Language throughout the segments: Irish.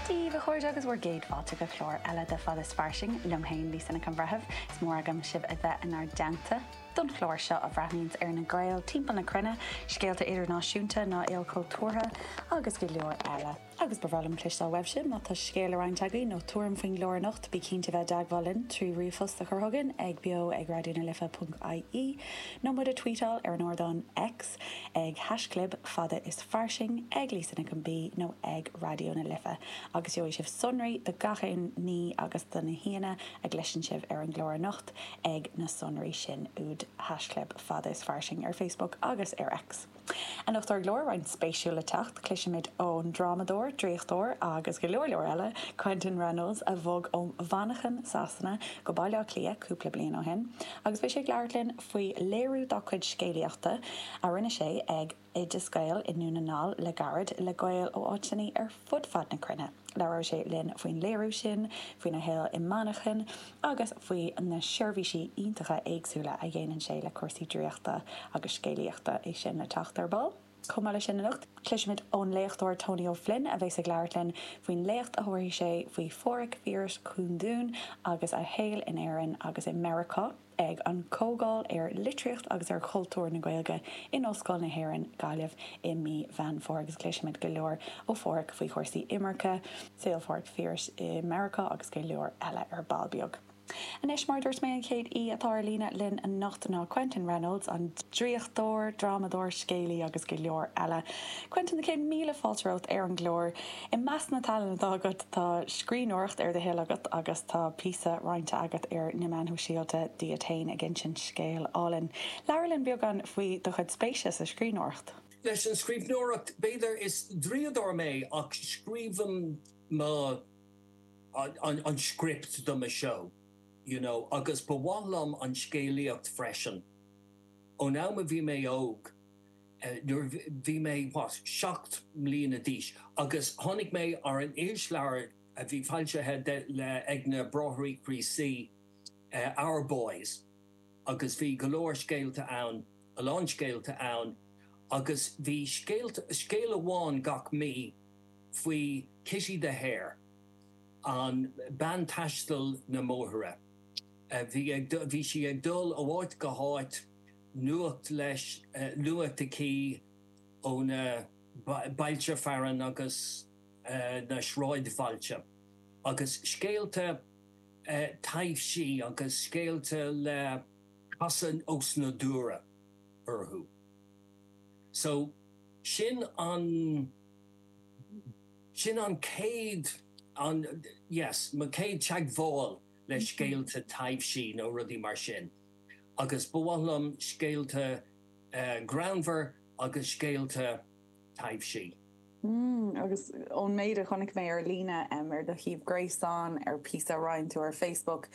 Dia daoibh a chairde agus bhur gcéad fáilte go clár eile de Fad is Fairsing liom fhéin, Lisa Nic an Bhreithimh. Is mór agam sibh a bheith inár dteannta don chlár seo a bhreathnaíonns ar na Gaeil timpeall na cruinne, scéalta idirnáisiúnta, na hilchultúrthachta agus go leor eile. Agus ba bhreá liom cloisteáil uaibh sibh, má tá scéal le roinnt agaibh nó tuairim faoin gclár anocht, bí cinnte bheith i dteagmháil linn trí ríomhphost a chur chugainn ag beo ag raidió na life ponc ie nó muid a tweetáil ar an ardán X ag haischlib fada is fairsing, ag Lisa Nic an B nó ag Raidió na Life agus gheobhaidh sibh sonraí do gach aon ní agus do na haíonna a gcloiseann sibh ar an gclár anocht ag na sonraí sin ag haischlib fada is fairsing ar Facebook agus ar X. Anocht ar an gclár roinnt spéisiúil le teacht, cloisfimid ón drámadóir, draíochtóir agus go leor leor eile, Quentin Reynolds a bhog ó Mhanchain, Sasana go Baile Átha Cliath cúpla bliain ó shin agus beidh sé ag labhairt linn faoi léiriú dá cuid scéalaíochta a rinne sé ag Oideas Gael i nDún na nGall le gairid le Gaeil ó áiteanna ar fud fad na cruinne. Labhróidh sé linn faoin léiriú sin, faoina shaol i Manchain agus faoi na seirbhísí iontacha éagsúla a dhéanann sé le cúrsaí draíochta agus scéalaíochta. É sin le teacht ar ball. Chomh maith leis sin anocht, cloisfimid ón léachtóir Tony Ó Floinn a bheas ag labhairt linn faoin léacht a thabharfaidh sé faoi Phádraig Phiarais Cúndún agus a shaol in Éirinn agus i Meiriceá. ag an gComhdháil ar Litríocht agus ar Chultúr na Gaeilge in Ollscoil na hÉireann, Gaillimh i mí Mheán Fómhair agus cloisfimid go leor ó Phádraig faoi chúrsaí imirce, saol Phádraig Phiarais i Meiriceá agus go leor eile ar ball beag. Anois, mar a dúirt mé, an chéad aoi atá ar líne linn anocht ná Quentin Reynolds, an draíochtóir, drámadóir, scéalaí agus go leor eile. Quentin, céad míle fáilte romhat ar an gclár. I measc na tallann atá agat tá scríbhneoireacht, ar do thoil agat, agus tá píosa roinnte agat ar na meáin shóisialta díot féin ag insint scéil álainn. Labhair linn beagán faoi do chuid spéise sa scríbhneoireacht. Leis an scríbhneoireacht, b'fhéidir, is draíodóir mé ach scríobhaim mo, an script do mo seó, you know, agus ba mhaith liom an scéalaíocht freisin. Ón am a bhí mé óg, nuair a bhí mé, what, seacht mbliana d'aois tháinig mé ar an irisleabhar a bhí foilsithe ag na Bráithre Críostaí, Our Boys, agus bhí go leor scéalta ann, a lán scéalta ann agus bhí scéal amháin gach mí faoi Kitty the Hare, an bean taistil na mbóithre. Bhí sí ag dul ó áit go háit. nuacht le, nuacht aici ó na bailte fearainn agus na sráidbhailte, agus scéalta taibhsí agus scéalta le casadh osnádúrtha orthu. So, sin an, sin an chéad, an, yes, mo chéad teagmháil le scéalta taibhsí nó rudaí mar sin. agus ba mhaith liom scéalta greannmhar agus scéalta taibhsí. Mmm agus ón méid a chonaic mé ar líne, ar do shuíomh gréasáin, ar píosa a roinn tú ar Facebook,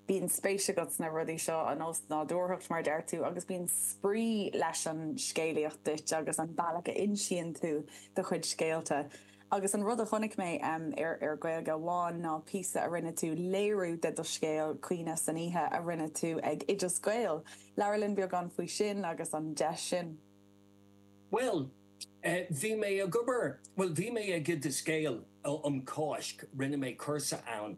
bíonn spéis agat sna rudaí seo, an osnádúrthacht mar a deir tú, agus bíonn spraoi leis an scéalaíocht duit agus an bealach a insíonn tú do chuid scéalta. Agus an rud a chonaic mé ar Gaeilge Amháin ná píosa a rinne tú, léiriú de do scéal, Caoineadh san Oíche, a rinne tú ag Oideas Gael. Labhair linn beagán faoi sin agus an deis sin. Bhuel, bhí mé ag obair, bhuel, bhí mé ag Oideas Gael um Cáisc, rinne mé cúrsa ann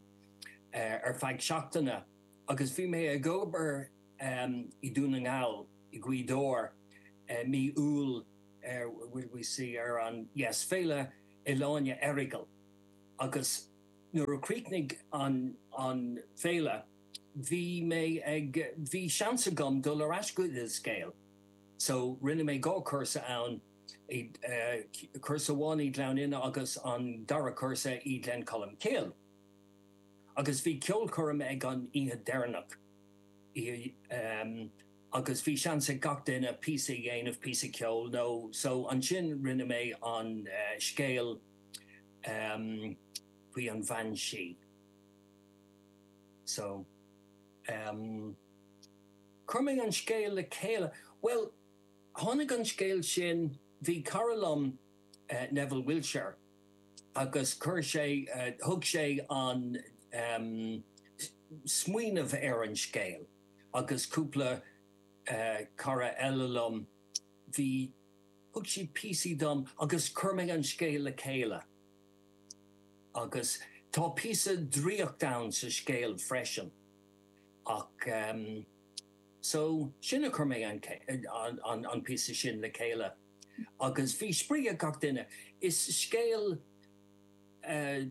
ar feadh seachtaine agus bhí mé ag obair i nDún na nGall, i Gaoth Dobhair, mí Iúil. ar will we see ar an yes Féile Ealaíne Errigal agus nuair a chríochnaigh an an Féile bhí mé ag bhí seans agam dul ar ais go Oideas Gael so rinne mé dhá chúrsa ann i cúrsa amháin i Gleann Fhinne agus an dara cúrsa i Glen Colm Cille agus bhí ceolchoirm ag an oíche deireanach i agus bhí seans ag gach duine píosa a dhéanamh, píosa ceoil nó so ansin rinne mé an scéal ehm faoi an bhean sí so ehm chuir mé an scéal le chéile, bhuel tháinig an scéal sin, bhí cara liom Neville Wiltshire agus chuir sé, thug sé an ehm smaoineamh ar an scéal. agus cúpla cara eile liom, bhí, thug siad píosaí dom agus chuir mé an scéal le chéile. Agus tá píosa draíocht ann sa scéal freisin. Ach ehm, so, sin a chuir mé an píosa sin le chéile. Agus bhí spraoi ag gach duine. Is scéal eh.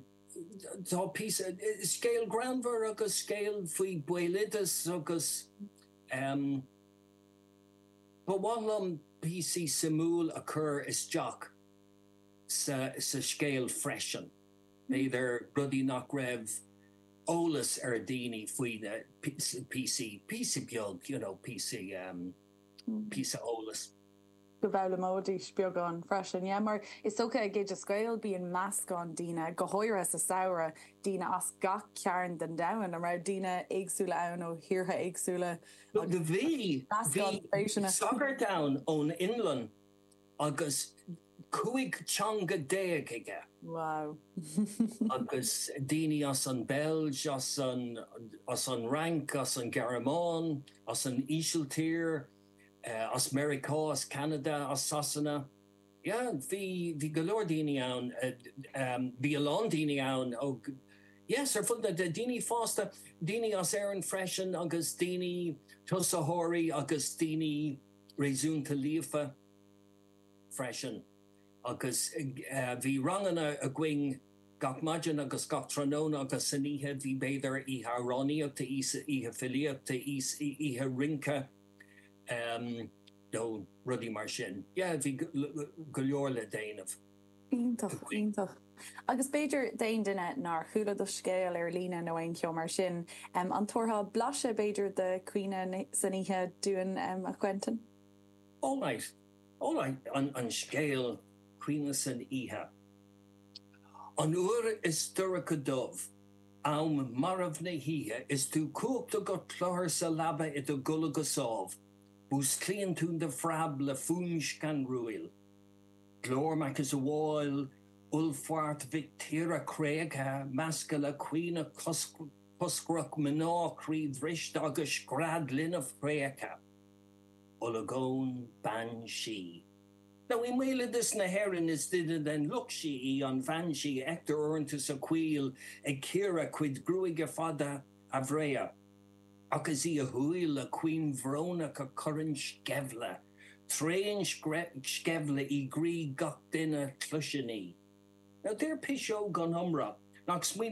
Tá píosa, scéal greannmhar agus scéal faoi bhéaloideas agus em ba mhaith liom píosaí suimiúil a chur isteach sa sa scéal freisin, b'fhéidir rudaí nach raibh eolas ar dhaoine faoi na píosaí, píosa beag, you know, píosa em, píosa eolas. go bhfoghlaimeoidís beagán freisin. Yeah mar is dócha ag Oideas Gael bíonn meascán daoine, go háirithe sa samhradh, daoine as gach cearn den domhan, an raibh daoine éagsúla ann ó thíortha éagsúla agus bhí, bhí sagart ann ón Fhionlainn agus cúig teanga déag aige. Wow. agus daoine as an Beilg, as an, as an Fhrainc, as an Ghearmáin, as an Ísiltír, as Meiriceá, as Ceanada, as Sasana. Yeah, bhí, bhí go leor daoine ann, bhí a lán daoine ann ó, yes, ar fud na, daoine fásta, daoine as Éirinn freisin agus daoine, tosaitheoirí agus daoine réasúnta líofa freisin. Agus bhí ranganna againn gach maidin agus gach tráthnóna agus san oíche bhí, b'fhéidir, oíche amhránaíochta, oíche filíochta, oíche rince nó rudaí mar sin. Yeah, bhí go leor le déanamh againn. Iontach, iontach. Agus b'fhéidir, d'aon duine nár chuala do scéal ar líne nó aon cheo mar sin, an dtabharfá blaiseadh, b'fhéidir, de 'Caoineadh san Oíche' dúinn, a Quentin? All right. All right, an scéal Caoineadh san Oíche. An uair is dorcha dubh, am marbh na hoíche is tú cuachta go cluthar sa leaba i do gcodladh go sámh, músclaíonn tú de phreab le fuaim scanrúil. Glór macasamhail uallfairt mhic tíre créachta measctha le caoineadh coscrach mná croíbhriste agus scread linbh thréigthe. Olagón, Bean Sí. Now i mbéaloideas na hÉireann is duine den lucht sí í an bhean sí. Feictear uaireanta sa choill ag cíoradh a cuid gruaige fada bhreá. Ach is í a huaill chaoin bhrónach a chuireann sceimhle, tréan sceimhle i gcroí gach duine a chloiseann í. Now deir piseoga an iomrá nach smaoineamh